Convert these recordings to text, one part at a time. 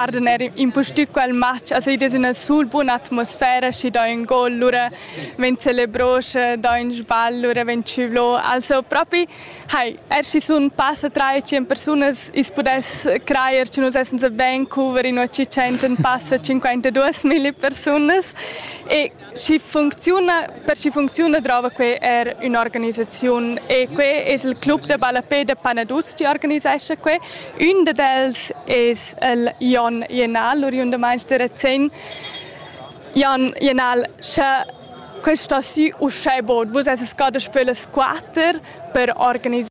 Arden er impustü quel match, as id es üna sul buna atmosfera, schi do ün gol, lura vegn celebros, do ün sbagl, lura vegn tschüvlo. Also propi, hai, er schi sun passa 3-5 persunas, i's pudess crajer che nus essens a Vancouver in 100 passa 52.000 persunas e Schi funcziuna, per chi funcziuna drova que er ün'organisaziun e que es il club da ballapè da Panaduz chi organisescha que. Ün dad els es il Jon Jenal, l'oriundamaint da Razén. Jon Jenal, sche questa sü uschè bod, vus essas da spiel las quatter per organisar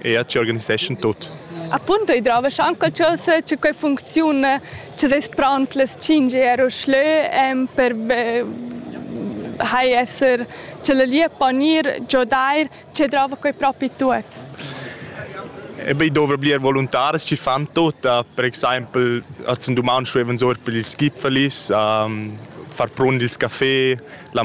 e ci organiseschan tut. Appunto i drova anche qualcosa c'è quella funzione ci sei pronti le 5 euro schlö per hai esser ce le lì a ponir giodar ci drova quei propri tut. E beh, dovrà blir voluntaris ci fan tutta, per exempel als un duman stuevan sur per il Skipferlis, um, far prund il café, la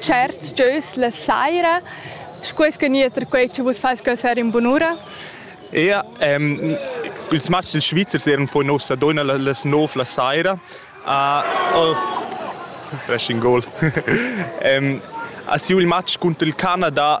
certs gieus la saira, sco es gnir quei che vus fais quella sera in bunura? Ja, ähm, ils matchs dils Svizzers eran vor nossa donna las 9 la saira. Uh, oh, dressing goal. ähm, a siu il match cunter il Canada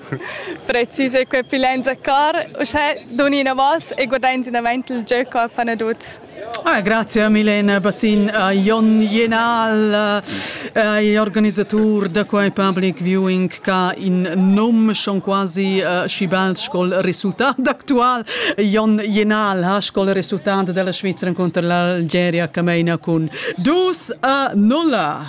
Precis e quei pilenza car, uschè dun inavos e guardain sinavant il gieu a Panaduz. Ah, grazie a Milena Bassin, a Jon Jenal, eh, organisatur da quei public viewing ca in num schon quasi uh, schi bald scol resultat actual. Jon Jenal ha scol resultat della Svizzera contro l'Algeria Cameina cun 2 a 0.